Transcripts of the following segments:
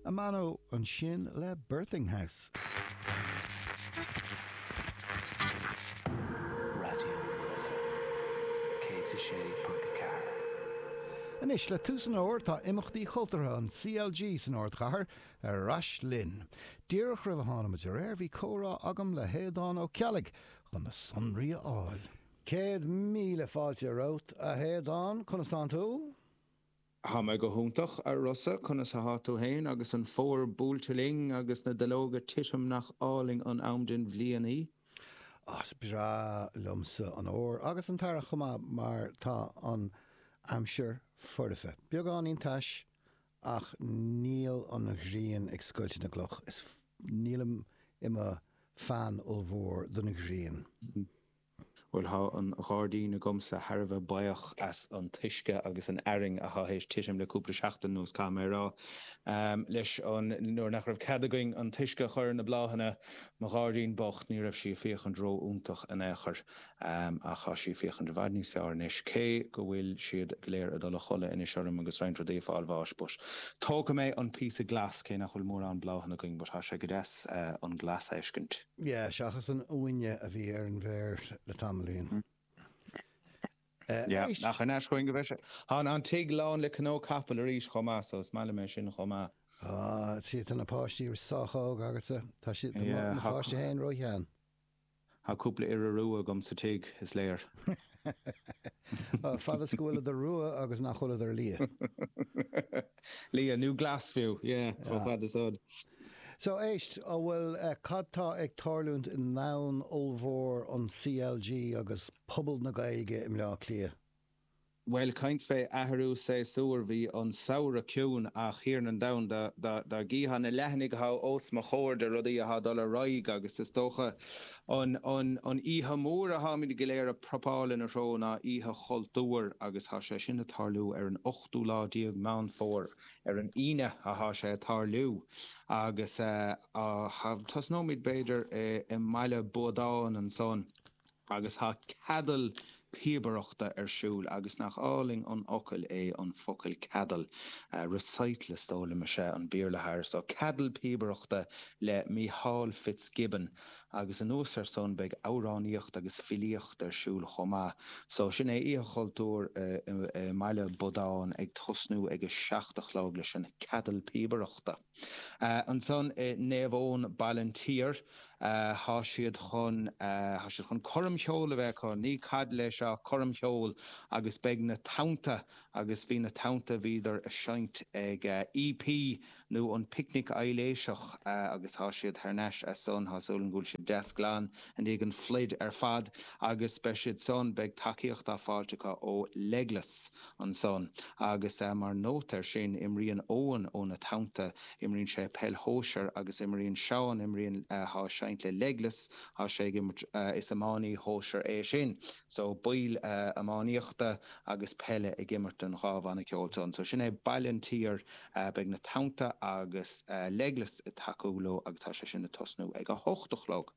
Amano ansin le Birthing House. Raidió na Life 106.4. Anois le tús an fhómhair tá imeachtaí cultúrtha an CLG san ardchathair ar ais linn. Díreach roimh a tháinig muid ar aer bhí comhrá agam le hAodán Ó Ceallaigh chun na sonraí a fháil. Céad míle fáilte romhat, a Aodáin. Conas tánn tú? Tá mé go hiontach, a Rossa, conas athá tú fhéin agus an fómhar buailte linn agus na duilleoga ag titim nach álainn an am den bhliain é? Ó, is breá liomsa an fómhar agus an t-earrach chomh maith mar tá an aimsir foirfe, beagáinín tais ach níl an ghrian ag scoilteadh na gcloch is nílim i mo Fan ollmhór don ghrian. Bhuel, thá an ghairdín agamsa thar a bheith buíoch as an t-uisce agus an fhearthainn athá théis titim le cúpla seachtain anuas, caithfidh mé a rá. Leis, nuair nach raibh cead againn an t-uisce a chur ar na bláthanna, mo ghairdín bocht, ní raibh sí ag féachaint ró-iontach in aon chor. Ach thá sí ag féachaint i bhfad níos fearr anois, cé go bhfuil siad go léir ag dul a chodladh anois orm agus roinnt rudaí ag fáil bháis, but tógfaidh mé an píosa glas, cé nach bhfuil mórán bláthanna againn, but thá sé go deas an glas a fheiscint. Yeah, seachas an uaine a bhí ar an bhféar le tamaillín. Yeah, ach an ait chugainn go bhfuil sé. Tá an tigh lán le cnónna capaill arís chomh maith, so is maith liom é sin chomh maith. Ah, sea, tá na páistí sách óg agatsa. Tá siad, tá mo pháiste féin ró-shean. Tá cúpla iora rua agam sa tigh, is léir. Fad is go bhfuileadar rua agus nach bhfuileadar liath. Liath, nó glas fiú, yeah, chomh fada is a. So, éist, an bhfuil, cad tá ag tarlúint i ndomhan ollmhór an CLG agus pobal na Gaeilge i mBleá Cliath? Bhuel, caint fé athrú séasúir, bhí an samhradh ciúin ach a Thiarna an domhain dá, dá, dá gcífeá na leathanaigh atá os mo chomhair de rudaí atá ag dul ar aghaidh agus is dócha an, an, an oíche mhór a tháimid go léir ag preapáil ina threo ná Oíche Chultúir agus tá sé sin ag tarlú ar an ochtú lá déag Meán Fómhair, ar an Aoine atá sé ag tarlú, agus tosnóimid b'fhéidir i mBaile Buadáin ansan, agus tá ceadal píobaireachta ar siúl, agus nach álainn an focal é an focal ceadal, recital is dóigh liom is ea an Béarla atá air, so, ceadal píobaireachta le Mícheál Fitzgibbon. Agus anuas air san beidh amhránaíocht agus filíocht ar siúl chomh maith. So sin é, Oíche Chultúir i mBaile Buadáin ag tosnú ag a seacht a chlog leis an Ceadal Píobaireachta. Ansan i Naomh Eoin, Ballinteer, tá siad chun, tá siad chun coirm cheoil a bheith acu, ní ceadal é seo, coirm cheoil agus beidh na Tonnta agus bhí na Tonnta, bhíodar ag seinnt ag EP nó an Picnic Aibhléiseach, agus tá siad thar n-ais as san, tá súil agam go bhfuil siad deas glan i ndiaidh an phluid ar fad, agus beidh siad san, beidh tacaíocht á fáilt acu ó Legless ansan. Agus mar nóta ar sin, imríonn Eoin ó na Tonnta, imríonn sé peil shóisir, agus imríonn Seán, imríonn, atá ag seinnt le Legless, tá sé ag imirt, is iománaí sóisir é sin, so baill iománaíochta agus peile ag imirt don dhá bhanna ceoil san. So sin é Baile an tSaoir Beidh na Tonnta agus Legless ag tacú leo agus tá sé sin ag tosnú ag a hocht a chlog.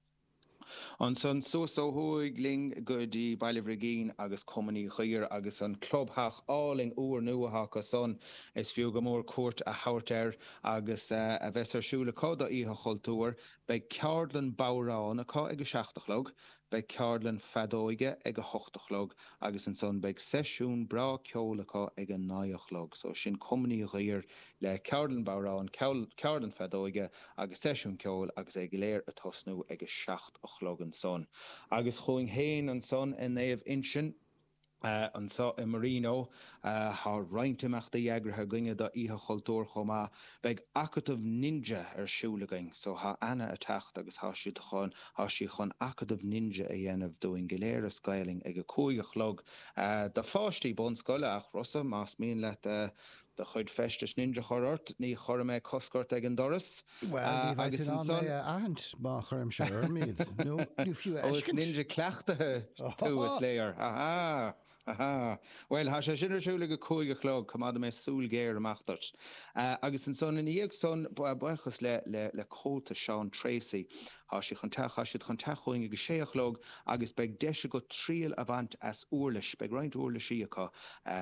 Ansan suas ó thuaidh linn go dtí Baile Bhrigín agus Cumann Uí Dhuibhir agus an clubtheach álainn úr nua atá acu san. Is fiú go mór cuairt a thabhairt air agus a bheas ar siúl acu do Oíche Chultúir. Beidh ceardlann bodhrán acu ag a seacht a chlog. Beidh ceardlann feadóige ag a hocht a chlog agus ansan beidh seisiún breá ceoil acu ag a naoi a chlog. So sin Cumann Uí Dhuibhir le ceardlann bodhrán, ceardlann feadóige agus seisiún ceoil agus é go léir ag tosnú ag a seacht a chlog ansan. Agus chugainn féin ansan i Naomh Uinseann. Anseo i Marino, tá roinnt imeachtaí eagraithe againne do Oíche Chultúir chomh maith. Beidh Acadamh Ninja ar siúl againn, so tá Anna ag teacht agus tá siad chun, tá sí chun Acadamh Ninja a dhéanamh dúinn go léir as Gaelainn ag a cúig a chlog do pháistí bunscoile ach Rossa más mian leat do chuid feistis ninja chur ort, ní chuirfidh mé cosc ort ag an doras. Bhuel, ní bheidh tú in ann mé a aithint má chuirimse orm iad, nó fiú a fheiscint. Ó, is ninja cleachtaithe thú, is léir. Aha! Aha! Bhuel, tá sé sin ar siúl ag a cúig a chlog, coimeádfaidh mé súil ghéar amach duit. Agus ansan, ina dhiaidh san, buíochas le Comhaltas Seán Treacy, Tá siad chun teacht, tá siad chun teacht chugainn ag a sé a chlog agus beidh deis agat triail a bhaint as uirlis, beidh roinnt uirlisí acu,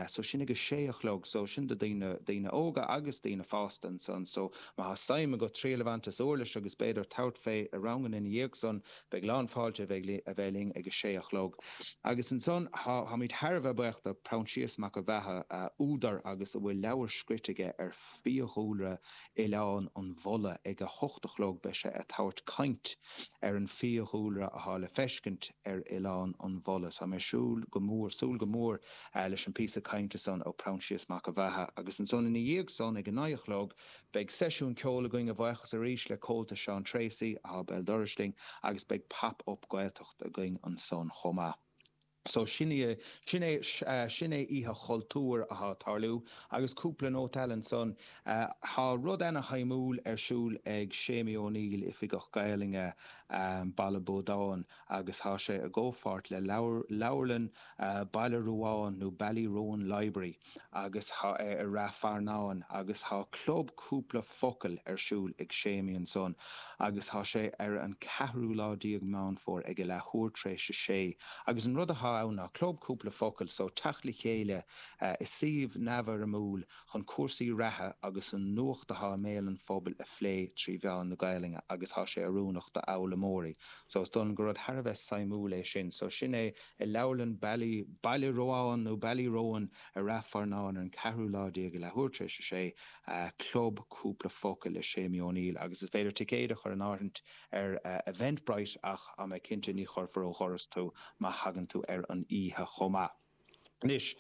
so sin ag a sé a chlog, so sin do daoine, daoine óga agus daoine fásta ansan, so má tá suim agat triail a bhaint as uirlis agus b'fhéidir tabhairt fé i ranganna ina dhiaidh san, beidh lán fáilte a bheith, a bheith linn ag a sé a chlog. Agus ansan tá, táimid thar a bheith buíoch do Proinsias Mac an Bheatha, údar agus a bhfuil leabhar scríte aige ar. fiadhúlra Oileán an Bhulla ag a hocht a chlog beidh sé a' tabhairt caint ar an fiadhúlra athá le feiscint ar Oileán an Bhulla. Tá mé súil go mór, súil go mór leis an píosa cainte san ó Proinsias Mac a' Bheatha agus ansan ina dhiaidh san ag a naoi a chlog beidh seisiún ceoil againn a bhuíochas arís le Comhaltas Seán Treacy athá béal dorais linn agus beidh Pop Up Gaeltacht againn ansan chomh maith. So sin í, sin é, sin é Oíche Chultúir atá ag tarlú agus cúpla nóta eile ansan. Tá rud ana-shuimiúil ar siúl ag Séimí Ó Néill, Oifigeach Gaelainne Baile Buadáin agus tá sé i gcomhpháirt le leabharlann Baile Ruáin nó Ballyroan Library. agus thá sé i Ráth Fearnáin agus thá club cúpla focal ar siúl ag Séimí ansan agus thá sé ar an ceathrú lá déag Meán Fómhair ag a leathuair tréis a sé agus an rud athá ann ná club cúpla focal so teacht le chéile i suíomh neamhfhoirmiúil chun cúrsaí reatha agus an nuacht athá i mbéal an phobail a phlé trí mheán na Gaelainne agus thá sé oiriúnach do fhoghlaimeoirí so is dóigh liom gur rud thar a bheith suimiúil é sin so sin é I leabharlann Bally, Baile Ruáin nó Ballyroan, i Ráth Fearnáin ar an ceathrú lá déag ag leathuair tar éis a sé, Club Cúpla Focal le Séimí Ó Néill agus is féidir ticéid a chur in áirithint ar Eventbrite ach tá mé cinnte ní chuirfear ó dhoras tú má thagann tú ar an oíche chomh maith. Anois.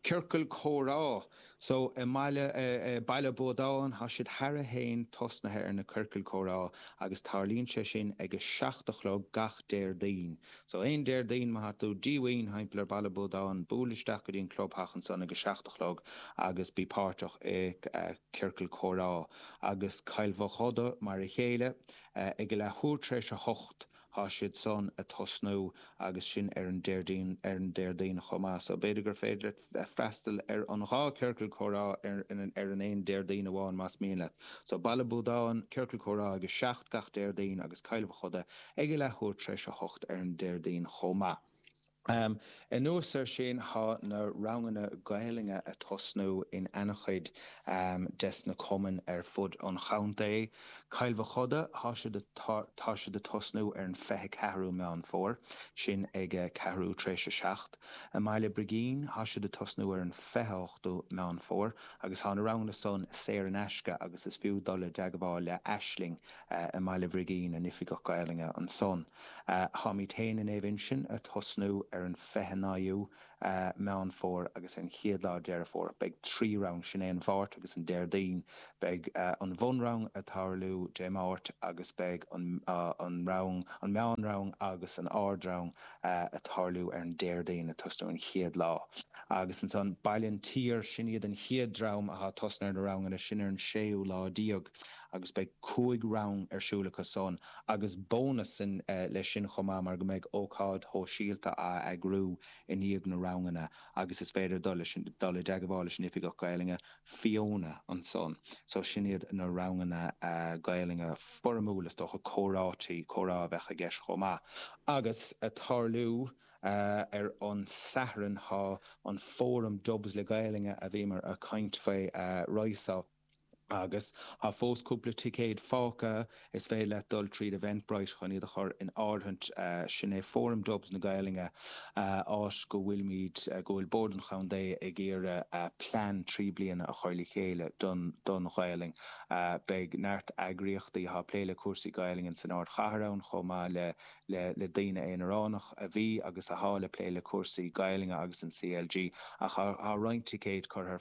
ciorcal comhrá. So i mBaile, Baile Buadáin, tá siad cheana féin tosnaithe ar na ciorcail comhrá agus tarlaíonn sé sin ag a seacht a chlog gach Déardaoin. So aon Déardaoin má tá tú díomhaoin thimpeall ar Baile Buadáin, buail isteach go dtí an clubtheach ansan ag a seacht a chlog agus bí páirteach i ciorcal comhrá. Agus Cill Mhochuda mar a chéile, ag a leathuair tar éis a hocht, Tá siad san a' tosnú agus sin ar an Déardaoin, ar an Déardaoin chomh maith. So b'fhéidir gur féidir leat freastal ar an dhá Ciorcal Comhrá ar an, ar an aon Déardaoin amháin más mian leat. So Baile Buadáin, Ciorcal Comhrá ag a seacht gach Déardaoin agus Cill Mhochuda ag a leathuair tar éis a hocht ar an Déardaoin chomh maith. Anuas ar sin tá na ranganna Gaelainne a tosnú in ana-chuid des na cumainn ar fud an chontae. Cill Mhochuda tá siad tá siad a tosnú ar an fiche ceathrú Meán Fómhair, sin ag ceathrú tar éis a seacht. I mBaile Brigín tá siad a tosnú ar an fiche hochtú Meán Fómhair agus tá na ranganna san saor in aisce agus is fiú dul i dteagmháil le Aisling i mBaile Bhrigín, a nOifigeach Gaelainne ansan. Táimid féin i Naomh Uinseann ag tosnú ar an 29ú Meán Fómhair agus ar an 1ú lá Deireadh Fómhair. Beidh trí rang, sin é an Mháirt agus an Déardaoin. Beidh an bhunrang ag tarlú Dé Máirt agus beidh an rang, an meán rang agus an ardrang ag tarlú ar an Déardaoin ag tosnú an chéad lá. Agus ansan Baile an tSaoir, sin iad an chéad dream atá ag tosnú ar na ranganna, sin ar an séú lá déag. Agus beidh cúig rang ar siúl acu san. Agus bónas leis sin chomh maith mar go mbeidh ócáid shóisialta á eagrú i ndiaidh na ranganna agus is féidir dul, dul i dteagmháil leis an Oifigeach Gaelainne, Fiona, ansan. So sin iad na ranganna Gaelainne foirmiúla, is dócha comhráití, comhrá a bheadh i gceist chomh maith. Agus a' tarlú ar an Satharn, tá an fóram Dubs le Gaelainne a bhíomar a' caint faoi Rise Up, Agus tá fós cúpla ticéad fágtha, is féidir leat dul tríd Eventbrite chun iad a chur in áirithint. Sin é Fóram Dubs na Gaelainne, áit go bhfuilimid, go bhfuil Bord an Chontae ag iarraidh plean trí bliana a chur le chéile don, don Ghaelainn. Beidh neart eagraíochtaí atá ag plé le cúrsaí Gaelainne san ardchathair ann chomh maith le le daoine aonaránach a bhí agus athá ag plé le cúrsaí Gaelainne agus an CLG ach athá roinnt ticéid curtha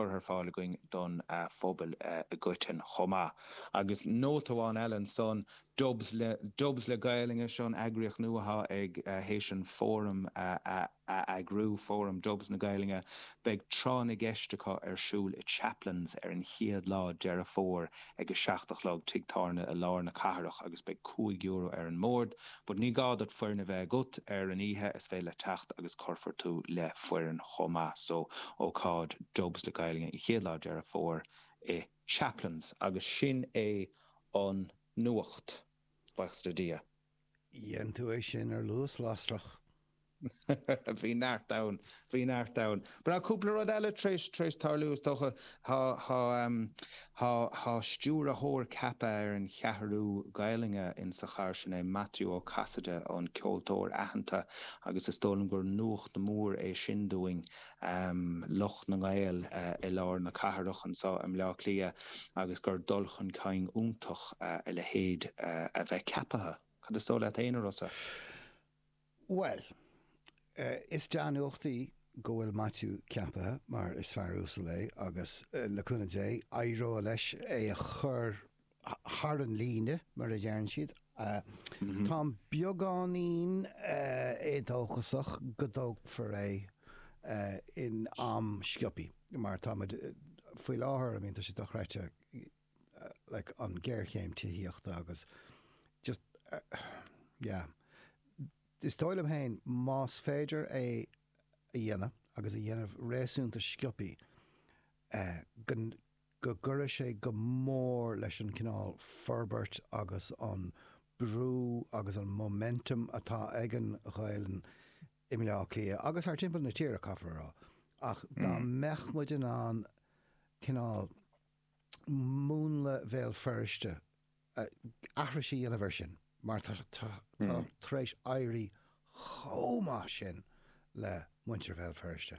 ar fáil againn don phobail i gcoitinn chomh maith. Agus nóta amháin eile ansan, Dubs le Gaelainn is ea an eagraíocht nua athá tar éis an Fóram a a eagrú, Fóram Dubs na Gaelainne, Beidh Tráth na gCeist acu ar siúl i Chaplains ar an chéad lá Deireadh Fómhair ag a seacht a chlog, tigh tábhairne i lár na cathrach agus beidh cúig euro ar an mbord bord, ní gá duit foireann a bheith agat ar an oíche, is féidir leat teacht agus cuirfear tú le foireann chomh maith so, ócáid Dubs na Gaelainne an chéad lá Deireadh Fómhair i Chaplains agus sin é an nuacht, baochas le Dia. Dhein tú é sin ar luas lasrach. Bhí neart ann, bhí neart ann. Beidh cúpla rud eile tar éis, tar éis tarlú is dócha. Tá, tá ehm, tá, tá stiúrthóir ceaptha ar an Cheathrú Gaelainne insa chathair, sin é Maitiú Ó Casaide, an ceoltóir aitheanta agus is dóigh liom gur nuacht mór é sin dúinn. lucht na nGael i lár na cathrach anseo i mBleá Cliath agus gur dul chun cinn iontach a leithéid a bheith ceapaithe. Cad is dóigh leat fhéin, a Rossa? Bhuel, is dea-nuacht í go bhfuil Maitiú ceapaithe mar is fear uasal é agus, le cúnamh Dé, éireoidh leis é a chur thar an líne, mar a deireann siad. Táim beagáinín éadóchasach go dtógfar é in am sciobtha, mar tá muid, faoi láthair, I mean tá sé dochreidte like an géarchéim tithíochta agus just yeah. Is dóigh liom féin más féidir é a dhéanamh agus a dhéanamh réasúnta sciobtha go, go gcuirfeadh sé go mór leis an chineál forbairt agus an brú agus an momentum atá ag an Ghaelainn i mBleá Átha Cliath agus thar timpeall na tíre, caithfear a rá. Ach dá mbeadh muid in ann cineál múnla Bhéal Feirste, aithris a dhéanamh air sin, mar tá tar éis éirí chomh maith sin le muintir Bhéal Feirste.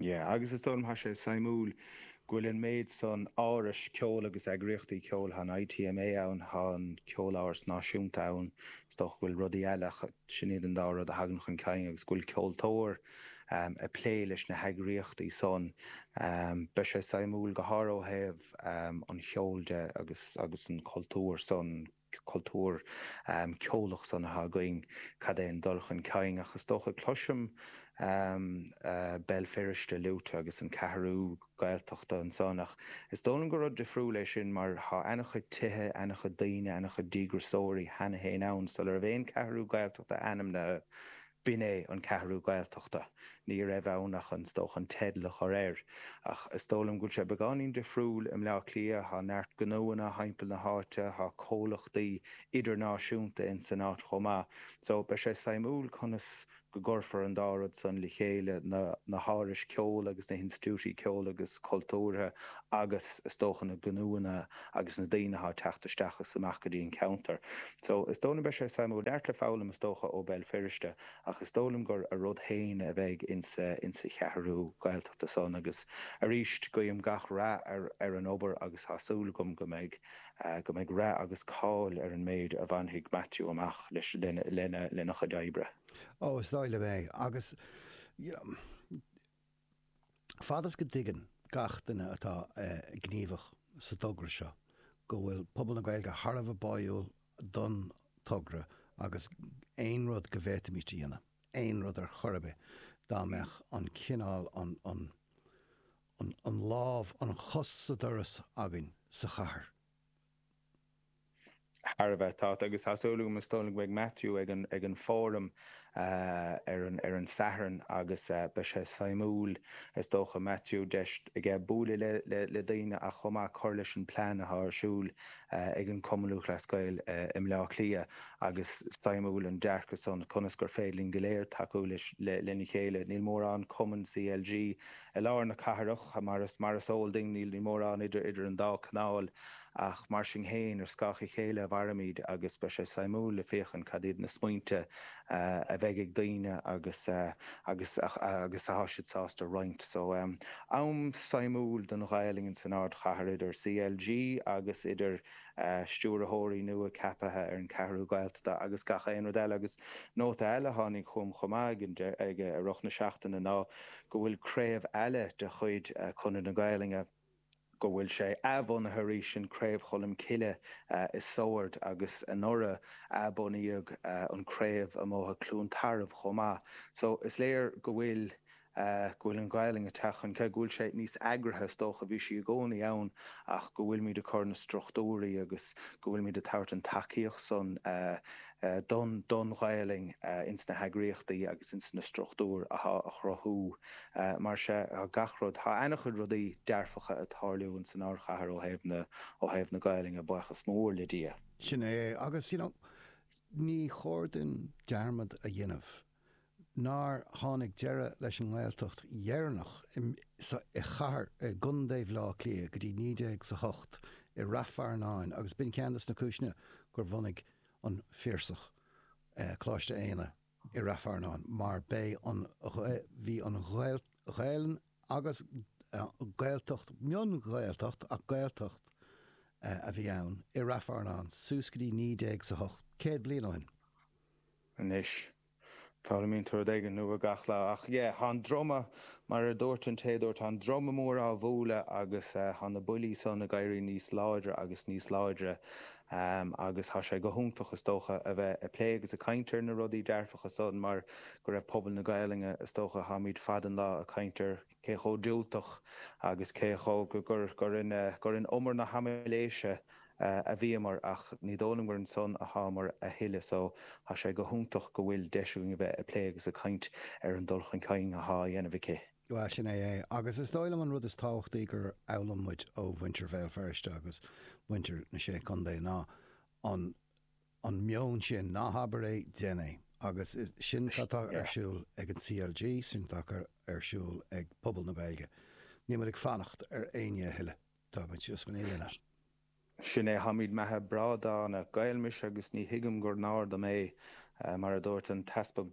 Yeah, agus is dóigh liom tá sé suimiúil go bhfuil an méid san árais ceoil agus eagraíochtaí ceoil, tá an ITMA ann, tá an Ceoláras Náisiúnta ann, is dócha go bhfuil rudaí eile ach sin iad an dá rud a thagann chun cinn agus go bhfuil ceoltóir ag plé leis na heagraíochtaí san. Beidh sé suimiúil go háirithe ó thaobh an cheoil de agus agus an chultúir san. cultúr ceolach sonraithe againn, cad é an dul chun cinn ach is dócha, cloisim Béal Feirste luaite agus an Ceathrú Gaeltachta ansan ach is dóigh liom gur rud difriúil é sin mar tá ana-chuid tithe, ana-chuid daoine, ana-chuid díograsóirí cheana féin ann sular raibh aon Cheathrú Gaeltachta ainmnithe B'in é An Ceathrú Ghaeltachta. Ní raibh ann ach an, is dócha, an teideal a chur air. Ach is dóigh liom go bhfuil sé beagáinín difriúil i mBleá Cliath, tá neart gnóanna thimpeall na háite, tá comhlachtaí idirnáisiúnta in san áit chomh maith. So, beidh sé suimiúil conas go gcuirfear an dá rud san le chéile, na hárais ceoil agus na hinstitiúidí ceoil agus cultúrtha agus is dócha na gnóanna, agus na daoine atá ag teacht isteach is amach go dtí an ceantar. So, is dóigh liom beidh sé suimiúil. Neart le foghlaim is dócha ó Béal Feirste ach is dóigh liom gur a rud féin a bheidh insa, insa Cheathrú Gaeltachta san agus arís guím gach rath ar an obair agus tá súil agam go mbeidh, go mbeidh rath agus cáil ar an méid a bhainfidh Maitiú amach leis, lena, lena chuid oibre. Oh, is dóigh liom é agus, you know, Fad is go dtuigeann gach duine atá gníomhach sa dtogra seo go bhfuil pobal na Gaeilge thar a bheith báiúil don togra agus aon rud go bhféadfaimid a dhéanamh, aon rud ar chor ar bith, dá mbeadh an cineál, an, an, an, an lámh, an chos sa doras againn sa chathair, thar a bheith tart agus tá súil agam, is dóigh liom go mbeidh Matthew ag an Fóram ar an Satharn agus beidh sé suimiúil, is dócha, Matthew, deis aige buaileadh le daoine ach chomh maith cur leis an plean atá ar siúil ag an Cumann Lúthchleas Gael i mBleá Cliath agus suimiúil an dearcadh san, conas gur féidir linn go léir tacú lena chéile, níl mórán cumann CLG i lár na cathrach, mar is eol duinn, níl mórán idir an dá canáil, ach mar sin fhéin, ar scáth a chéile a mhairimid, agus beidh sé suimiúil le féachaint cad iad na smaointe a bheidh ag daoine agus atá siad sásta a roinnt. So, am suimiúil don Ghaelainn san Ardchathair, idir CLG agus idir stiúrthóirí nua ceapaithe ar an Ceathrú Ghaeltachta agus gach aon rud eile. Agus nóta eile a tháinig chugam chomh maith i rith na seachtaine ná go bhfuil craobh eile de chuid Chonradh na Gaelainne, go bhfuil sé athbhunaithe arís, sin Craobh Cholm Cille i Sord agus anuraidh athbunaíodh an craobh i mBóthar Chluain Tarbh chomh maith. So is léir go bhfuil, go bhfuil an Ghaelainn ag teacht chun cinn, go bhfuil sé níos eagraithe, is dócha, a bhí sí i gcónaí ann ach go bhfuilimid ag cur na struchtúirí agus go bhfuilimid ag tabhairt an tacaíocht san don Ghaelainn ins na heagraíochtaí agus ins na struchtúir athá á chruthú. Mar sea, tá gach rud, tá ana-chuid rudaí dearfacha ag tarlú ins an ardchathair ó thaobh na, ó thaobh na Gaelainne, baochas mór le Dia. Sin é, agus you know, ní chóir duinn dearmad a dhéanamh nár tháinig deireadh leis an nGaeltacht dheireanach i, sa, i chathair, i gCondae Bhleá Cliath go dtí naoi déag 's a hocht i Rath Fearnáin agus b'in ceann de na cúiseanna gur bhunaigh an Piarsach, Coláiste Éanna i Rath Fearnáin mar b'é an, bhí an Ghaelainn agus Gaeltacht, mion-Ghaeltacht ach Gaeltacht a bhí ann, i Rath Fearnáin suas go dtí naoi déag 's a hocht, céad bliain ó shin. Anois, Foghlaimíonn tú rud éigin nua gach lá. Ach yeah, thá an druma, mar a dúirt an té a dúirt, thá an druma mór á bhualadh agus thá na buillí san ag éirí níos láidre agus níos láidre. Agus thá sé go hiontach is dócha a bheith ag plé agus ag caint ar na rudaí dearfacha san mar go raibh pobal na Gaolainne, is dócha, tháimid fad an lá ag caint ar cé chomh diúltach agus cé chomh. gur in umar na haimiléise a bhíomar ach ní dóigh liom gur ansan athámar a thuilleadh so tá sé go hiontach go bhfuil deis againn a bheith ag plé agus ag caint ar an dul chun cinn athá á dhéanamh aici. Bhuel, sin é é. Agus is dóigh liom an rud is tábhachtaí gur fhoghlaim muid ó mhuintir Bhéal Feirste agus mhuintir na Sé Chontae ná an. an meon sin, ná habair é, déan é. Agus sin atá ar siúl ag an CLG, sin atá ar siúl ag pobal na Gaeilge. Níl muid ag fanacht ar éinne a thuilleadh, tá muid just chun é a dhéanamh. Sin é, táimid meatha breá dána. Gael mise agus ní thuigim gur náir dom é, mar a dúirt an tEaspag.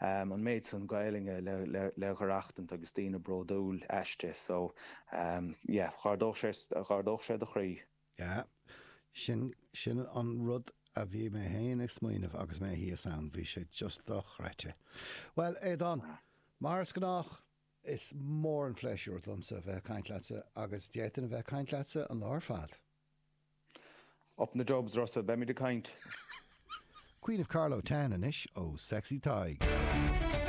an méid san Gaeilge le le haireachtaint agus daoine bródúil aisti so yeah d'ardódh sé d'ardódh sé do chroí. Yeah. Sin sin an rud a bhí mé fhéin ag smaoineamh agus mé thíos ann, bhí sé just dochreidte. Bhuel, Aodán, mar is gnách, is mór an phléisiúr domsa bheith ag caint leatsa agus d'fhéadfainn a bheith ag caint leatsa an lá ar fad. Up in the Dubs, Russell, beimid ag caint! Queen of Carlow Town anois ó Sexy Tadhg.